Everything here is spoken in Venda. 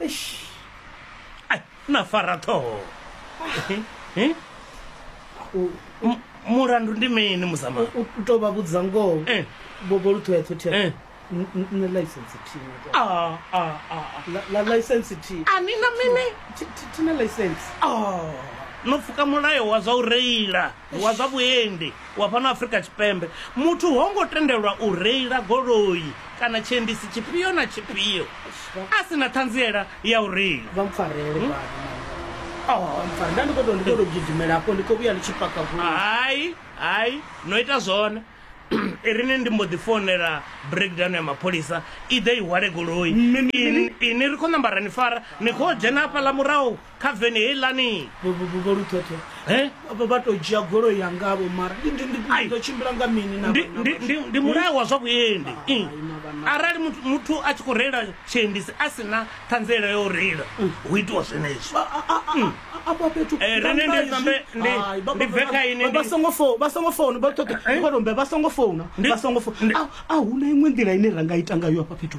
eish ai na fara ṱhoho Eh? U- M- mulandu ndi mini muzama u- u tou vha vhudza ngoho Eh. bobo lu ṱhoya ṱhothi Eh. nṋe license thina Ah, ah, ah, la license thi ah. ani na mini thi- thi- thina license Ah, no pfuka mulayo wa zwa u reila wa zwa vhuendi wa fhano Afrika Tshipembe, muthu ho ngo tendelwa u reila goloi kana tshiendisi tshifhio na tshifhio a si na ṱhanziela ya u reila. Vha mpfarele hmm? vhana. Oh, mpfarele. Nda ndi khou tou ndi khou tou gidimela hafho ndi khou vhuya ndi tshi paka goloi. Hai, hai, no ita zwone. irini ndi mbo ḓi founela breakdown ya mapholisa i ḓe i hwale goloi ini ri khou namba ra ni fara ni khou dzhena hafhaḽa murahu kha veni heiḽani vho lukhekhe vha vha to dzhia goloi ya ngavho mara ḓo tshimbila nga mini ndi mulayo wa zwa vhuendi arali muthu a tshi khou reila tshiendisi a si na ṱhanziela ya u reila hu itiwa zwenezwo a huna iṅwe nḓila ine ra nga ita ngayo afha fhethu